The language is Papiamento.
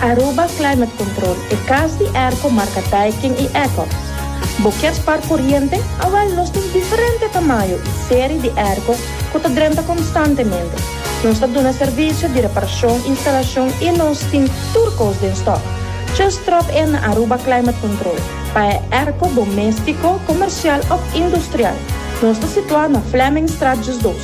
Aruba Climate Control, e cas di airco marca Daikin y Ecox. Bo kier spar coriente? Awel, nos tin diferente tamayo y serie di aircos cu ta drenta constantemente. Nos ta duna servicio di reparacion, instalacion y nos tin tur cos den stock. Just drop in na Aruba Climate Control pa e airco domestico, comercial of industrial. Nos ta situa na Flemingstraat Just Dos.